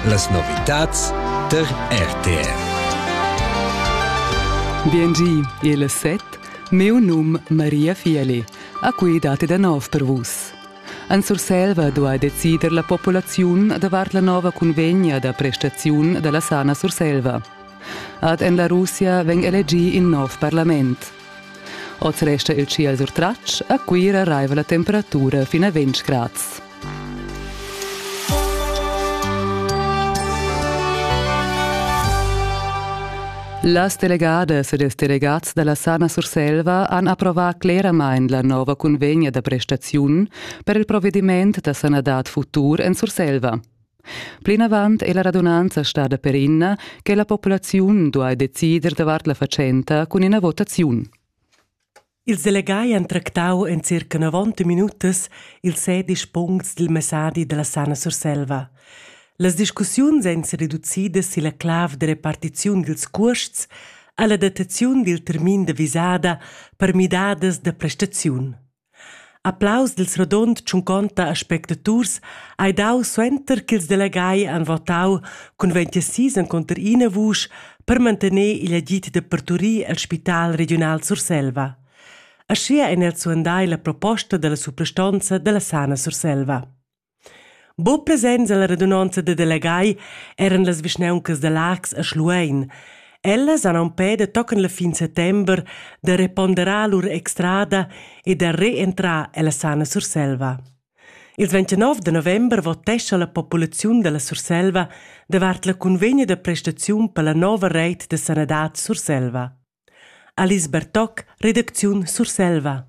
Las novitads tar RTR. Biengi, il set, meu num Maria Fieli, a cui date da nov per vus. An Surselva do a decider la populaziun davart la nova convegna da prestaziun della sana Surselva. Ad en la Russia veng elegi in nov parlament. Oz resta il tschiel surtratg, a Cuira raiva la temperatura fin a 20 grads. Las delegadas ed ils delegats dalla Sana Surselva han approvà cleramain la nova cunvegna da prestaziun per il provediment da sanadad futur en Surselva. Plinavant è la radunanza stada perina che la populaziun duai decider davart la fatschenta cun ina votaziun. Ils delegai han tractau en circa 90 minutas ils sedisch puncts dil messadi dalla Sana Surselva. Las discussiuns ein sereducidas silla clav de repartiziun dils cuosts alla dataziun dil termin de visada per midadas de prestaziun. Applaus dil rodund tschunconta aspectaturs ei dau suenter ch'ils delegai han votau cun ventisis encunter ina vusch per mantener igl agid da parturir el spital regiunal Surselva. Aschia ein els suandai la proposta dalla suprastonza dalla Sana Surselva. Buc presents ella radunonza da delegai eran las vischnauncas da Laax e Schluein. Ellas han empè da tochen la fin settember da reponderar lur extrada e da reentrar ella sana Surselva. Ils 29 de november votescha la populaziun dalla Surselva davart la cunvegna da prestaziun per la nova reit de sanadad Surselva. Alice Bertoc, redacziun Surselva.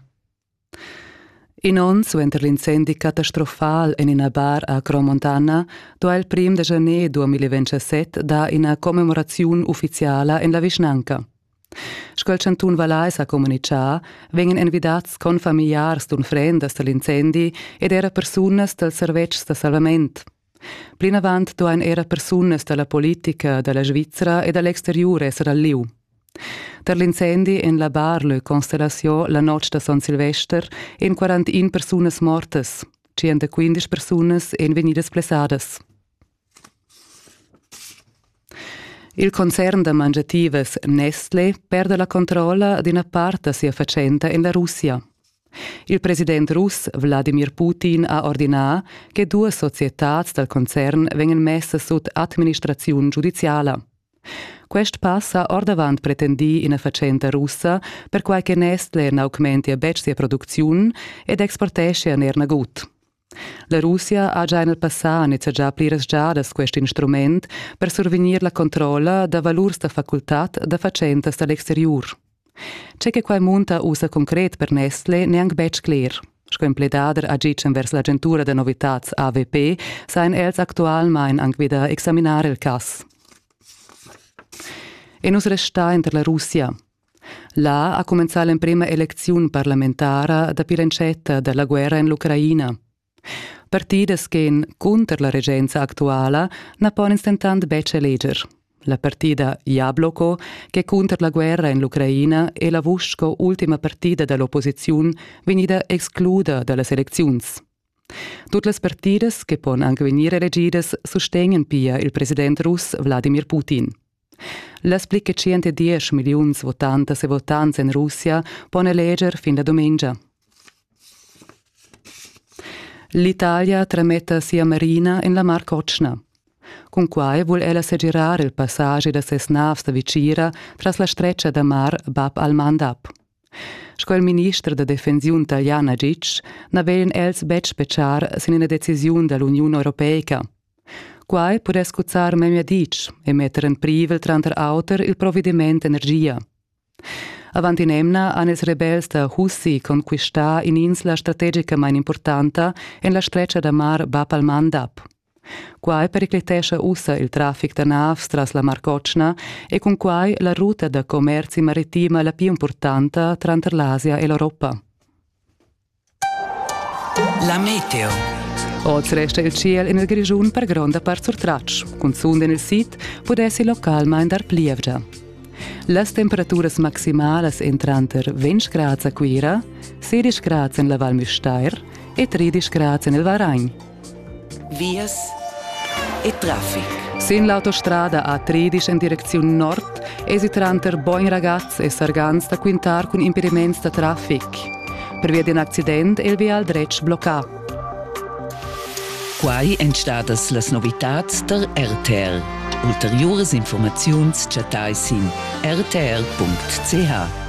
In onn suenter l'incendi catastrofal en ina bar a Cromontana do il prim da janer 2017 dar ina commemoraziun uffiziala en la vischnanca. Sco il chantun Valais ha communitgà, vegnan envidats confamiliars d'unfrendas dal incendi ed era persunas dals servetschs da salvament. Plinavant duain era persunas da la politica da la Svizra e da l'exteriur esser al lieu. Tar l'incendi en la Bar Le Constellation la notg da Son Silvester èn 41 persunas mortas, 115 persunas èn vegnidas blessadas. Il concern da mangiativas Nestle perda la controlla d'ina part da sia fatschenta en la Russia. Il president russ Wladimir Putin ha ordinà che duas societads dal concern vegnan messas sut administraziun giudiziala. Quest pass ha ordavant pretendì ina fatschenta russa, perquai che Nestle n'augmentia betg sia producziun ed exporteschia er nagut. La Russia ha già en il passà nizzegià pliras giadas quest instrument per survegnir la controlla da valurs da facultad da fatschentas da l'exteriur. Ce che quai munta ussa concret per Nestle n'è anc betg cler. Sco empledader agitg envers l'agentura da novitads AVP sain els actualmain anc vi da examinar il cass. E nus restar inter la Russia, Là ha cumenzà l'emprema elecziun parlamentara dapi l'entschetta da la guerra en l'Ucraina. Partidas ch'èn cunter la regenza actuala na pon ins dentant betg eleger. La partida Jabloko, ch'è cunter la guerra en l'Ucraina, è la vusch sco ultima partida da l'opposiziun vegnida excluda da las elecziuns. Tut las partidas che pon anc vegnir elegidas sustegnan pia il president russ Vladimir Putin. Las pli che tschient e diesch milliuns votantas e votants en Russia pon eleger fin la dumengia. L'Italia trametta sia marina en la Mar Cotschna. Cun quai vul ella segirar il passagi da ses navs da vicira tras la stretga da mar Bab al-Mandab. Sco il minister da defensiun italian Agic na vegn els betg betschar sin ina decisiun da l'Uniun europeica, Quai pudess cuzzar memia ditg e metter en privel tranter auter il provediment d'energia. Avant in'emna han ils rebels da Hussi conquistà in'insla strategicamain importanta en la stretga da mar Bab al-Mandab. Quai periclitescha ussa il traffic da navs tras la Mar Cotschna e cun quai la ruta da commerzi maritima la pli impurtanta tranter l'Asia e l'Europa. La meteo. Oz resta il tschiel en il Grischun per gronda part surtratg. Cunzunt en il sid pudessi localmain dar plievgia. Las temperaturas maximalas èn tranter 20 grads a Cuira, 16 grads en la Val Müstair e 13 grads en il Varagn. vias e traffic. Sin l'autostrada A13 en direcziun nord esi tranter Bogn Ragaz e Sargans da quintar cun impediments da traffic. Pervia d'in accident è il vial dretg bloccà. Quai èn stadas las novitads tar RTL. Ulteriuras informaziuns chattai sin rtr.ch.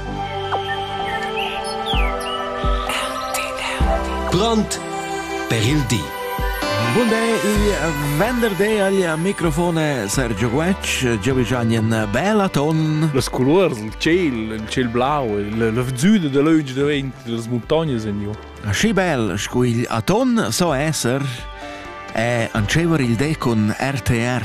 Grond per il di. Bunday i venderday agl microfone Sergio Guetg, jeu gian in bella ton. Las colurs, il ciel, il ciel blau, la vzuda da leuge davent das montagnes in ju. Aschi bel sco il aton so esser e ancever il de con RTR.